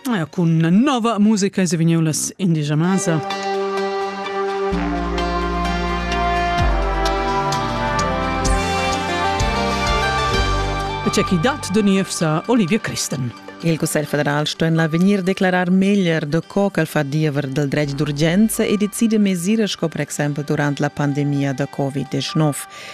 Ja, cun nova musica es vegniu las indigia masa. E c'è chi dat de niev sa Olivia Christen. Il Cussegl federal sto en l'avegnir declarar meglier de co ch'el fa diever del dretg d'urgenza e decide mesire sco per exempel durant la pandemia da Covid-19.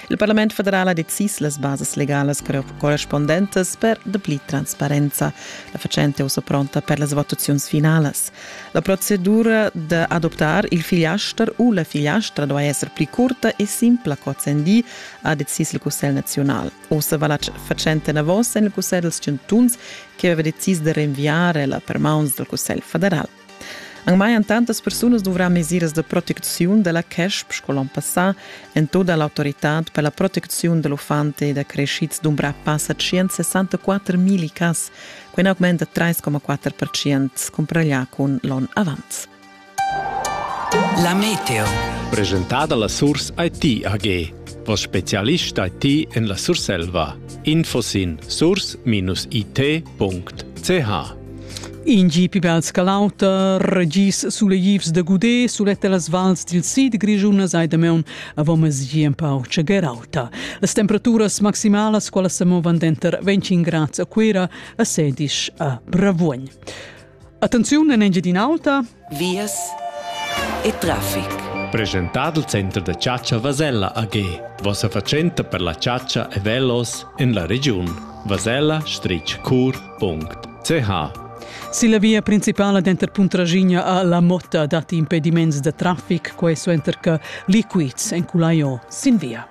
Il Parlament federal ha decis las basas legalas correspundentas per dapli transparenza. La fatschenta è ussa pronta per las votaziuns finalas. La procedura d'adoptar il figliaster u la figliastra duai esser pli curta e simpla qu'ozendi, ha decis il Cussegl naziunal. Ussa va la fatschenta enavos en il Cussegl dals chantuns che aveva decis da rinviare la per mauns dal Cussegl federal. Anc mai han tantas persunas duvrà mesiras da protecziun da la CESP sco l'onn passà entoda l'autoritad per la protecziun da l'uffant e da creschids dumbrà passa 164 mil cas, quai è augment da 3,4% cumpareglià cun l'onn avant. La meteo. Presentada la Surs IT AG. Voss spezialist IT en la Surselva. Info sin surs-it.ch In gi pi bel sca l'auter, regis suleivs da Gudé suletta las vals dil sid grischunas ai damaun avomas gi empau tschegerauta. Las temperaturas maximalas quala sa movan denter 25 grads a Cuira a Sedisch a Bravuogn. Attenziun en Engiadin'Alta, vias e traffic. Presentado il Center da Chatscha Vasella AG. Vossa fatschenta per la chatscha e velos en la regiun. vasella-cur.ch Silla via principala denter Puntraschigna a La Motta datti impediments da traffic, quei suenter che liquids enculai sin via.